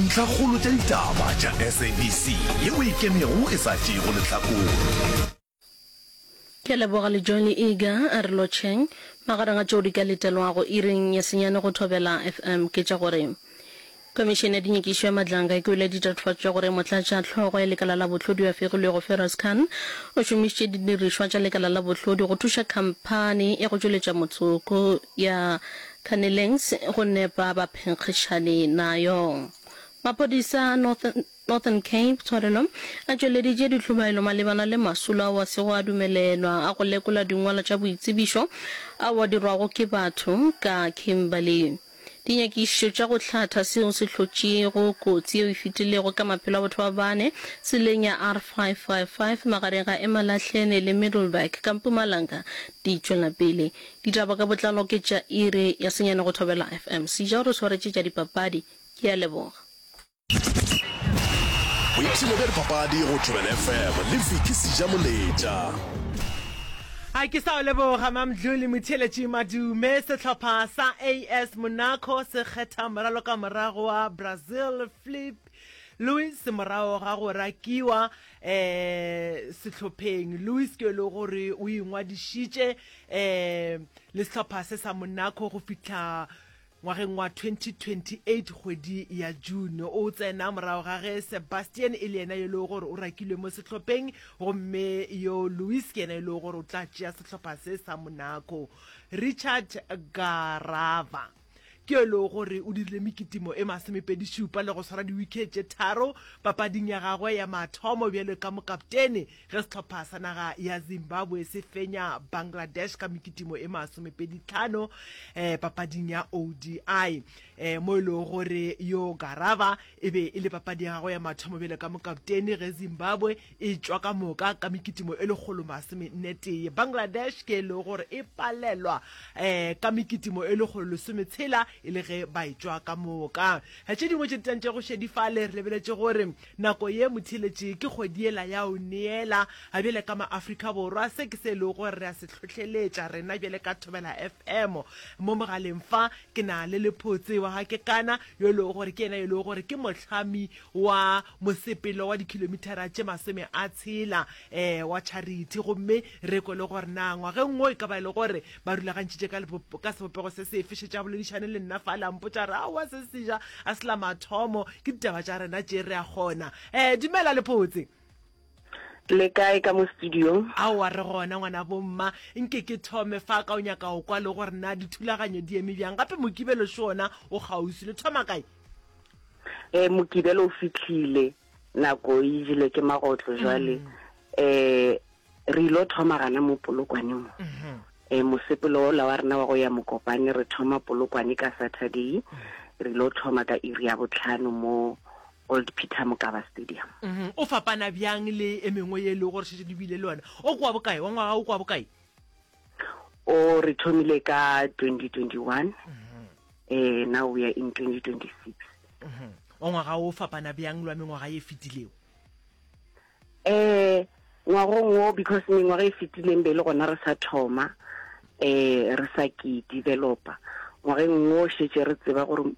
Ntlhakgolo tša ditaba tša SABC ye o e kemego e sa tšeego lehlakore. Ke a leboga le John Eager a re lotšheng. Magareng a tšeo di ka letelwago iring ya senyane go Thobela FM ke tša gore, Komišene ya Dinyakišo ya Matlanga e kwele ditatofatšo tša gore motlatša hlogo ya lekala la bohlodi yo a fegilwego Feroz Khan o šomišitše didirišwa tša lekala la bohlodi go thuša khamphani ya go tšweletša motsoko ya Kaneleng se go nepa ba phenkgišane nayo. Maphodisa a Northern Cape tshwarelo a tšweleditše ditlhobaelo malebana le masolo ao a sego a dumelelwa a go lekola dingwalo tša boitsebišo ao a dirwago ke batho ka Kimberley. Dinyakišišo tša go hlatha seo se hlotšego kotsi yeo e fetilego ka maphelo a batho ba bane tseleng ya R555 magareng ga Emalahleni le Middleburg ka Mpumalanga di tšwelapele. Ditaba ka botlalo ke tša iri ya senyane go Thobela FM. Sija o re swaretše tša dipapadi. Ke a leboga. Boipshino bja dipapadi go Thobela FM le Vicky Sija Moletša. A ke sa o leboga Mamdlu le motheeletši Madume. Sehlopha sa AS Monaco se kgetha moralokamoragwa Brazil Flipp Luis morago ga go rakiwa um sehlopheng Luis ke le gore o ingwadišitše um le sehlopha se sa Monaco go fihla ngwageng wa 2028 kgwedi ya June o tsena morago ga ge Sebastian e le yena yo le gore o rakilwe mo sehlopheng gomme yo Luis ke yena yo le gore o tla tšea sehlopha se sa Monaco Richard Garava ke yo e lego gore o dirile mekitimo e masomepedi-šupa le go swara diwikhe tše tharo papading ya gagwe ya mathomo bjalo ka mokaptene ge sehlopha sa naga ya Zimbabwe se fenya Bangladesh ka mekitimo e masomepedi-tlhano um papading ya ODI um mo e lego gore yo Garava e be e le papadi ya gagwe ya mathomo bjalo ka mokaptene ge Zimbabwe e tšwa ka moka ka mekitimo e lekgolo masomenetee Bangladesh ke e lego gore e palelwa um ka mekitimo e lekgolo lesometshela e le ge ba e tšwa ka moka. Tše dingwe tše di tantšego šedi fale re lebeletše gore nako ye motheeletše ke kgwedi yela ya go neela. Bjale ka ma-Afrika Borwa se ke se e lego gore re a se hlohleletša rena bjale ka Thobela FM. Mo mogaleng fa ke na le lephotse wa ga Kekana yo e lego gore ke yena yo e lego gore ke mohlami wa mosepelo wa dikhilomithara tše masome a tshela um wa charity gomme re kwe le gore na ngwageng wo e ka ba e le gore ba rulagantšhitše ka ka sebopego se sefe šetše a boledišane le nna fa la mpotša re aowa se seja a se la mathomo ke ditaba tša rena tše re a kgona um dumela lepotse Le kae ka mo studiong? Aowa re gona ngwana bomma. Nke ke thome fa ka o nyaka go kwa le gore na dithulaganyo di eme bjang gape Mokibelo še ona o kgauswi. Le thoma kae? Eh Mokibelo o fitlhile nako e jele ke magotlo jwale eh re ilo thoma gana mo Polokwane mo. Eh mosepelo ola wa rena wa go ya Mokopane re thoma Polokwane ka Saturday re ilo thoma ka iri ya botlhano mo Old Peter Mokaba Stadium. Mm-hmm. O fapana bjang le e mengwe ye e lego gore šetše le bile le yona? O kwa bokae? Wa ngwaga o kwa bokae? O re thomile ka 2021. Mm-hmm. Eh, now we are in 2026. Mm-hmm. Wa ngwaga o fapana bjang lwa mengwaga ye fetilego? Eh, ngwagong o because mengwaga e fetileng be le gona re sa thoma eh re sa ke developer ngwageng o šetše re tseba gore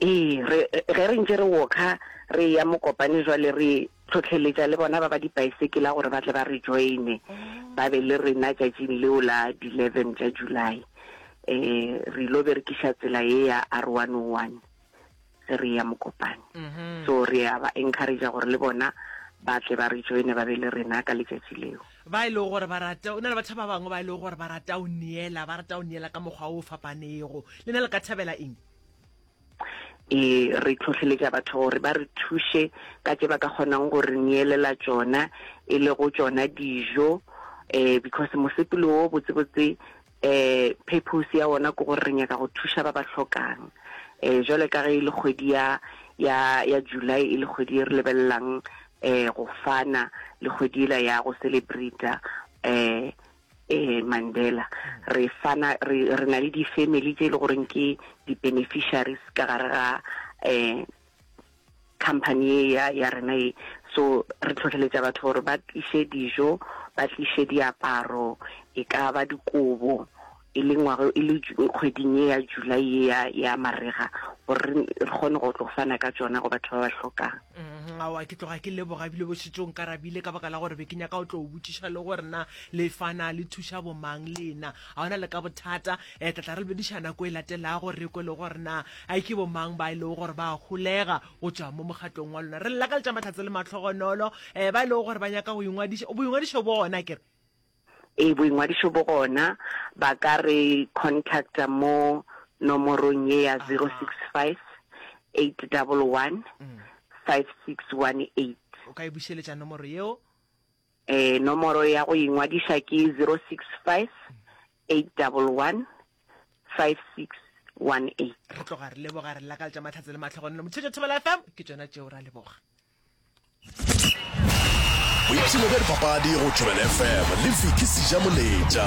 Ee, re, ge re ntše re wokha re ya mokopane jwale re tlhotlheletša le bona ba ba dipaesekela gore ba tle ba re joine mm. ba be le rena tšatšing leo la di-eleven tša july um re ilo berekiša tsela ye ya r one o oh one ge re ya mokopane mm-hmm. so re ya ba encouragea gore le bona ba tle ba re joine ba be le rena ka letšatši leo ba e lego gore ba rata o na le batho ba bangwe ba e lego gore ba rata o neela ba rata o neela ka mokgwa o fapanego le na le ka thabela eng e re tlhotlheletša batho gore ba re thuše ka tse ba ka kgonang gore neelela tsona e le go tsona dijo um because mosepelo o botsebotse Ee, purpose ya wona ke gore re nyaka go thuša ba ba hlokang. Ee, jwale ka ge e le kgwedi ya, ya, ya July, e le kgwedi e re lebelelang ee go fana, le kgwedi ela ya go celebrate-a ee, ee Mandela. Re fana, re, re na le di-family tše e le goreng ke di-beneficiaries ka gare ga ee company ye ya ya rena ye so re tlhotlheletša batho gore ba tliše dijo ba tliše diaparo e ka ba dikobo e le ngwago e le kgweding ye ya july ye ya ya marega gore re kgone go tlo fana ka tsona go batho ba ba hlokang mm-hmm. awa ke tloga ke leboga ebile bošetsong ka rabile ka baka la gore be ke nyaka o tlo o botšiša le gore na le fana le thuša bomang lena ga ona le ka bothata um tlatla re lebediša nako e latelago re kwe le gore na a ke bomang ba e lego gore ba golega go tšwa mo mogatong wa lona re lakaletša mahlatse le matlhogonolo um ba e lego gore ba nyaka go ingwadiša boingwadišo bo gona kere e boingwadišo bo gona ba ka re contacta mo nomorong ye ya 065 811 5618 o ka e bušeletša nomoro yeo Eh, nomoro ya go ingwadiša ke 0658115618. re tloga re leboga re lakaletša mahlatse le matlhogonelo motšhetšo thobela fm ke tšona tšeo ra leboga boipshino bja dipapadi go thobela fm le viki seja moletša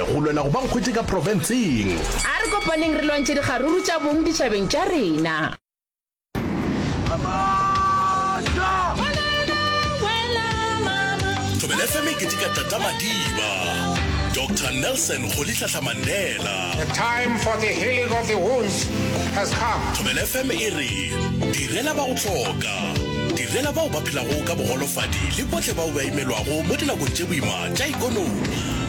Go lwela go ba nkgwetše ka profenseng. A re kopaneng re lwantšhe dikgaruru tša bong ditšhabeng tša rena. Thobela FM e keteka Tata Madiba, Doctor Nelson Rolihlahla Mandela. The time for the healing of the wounds has come. Thobela FM e re, Direla ba go hloka. Direla bao ba phelago ka bogolofadi le bohle bao ba imelwago mo dinakong tše boima tša ikonomi.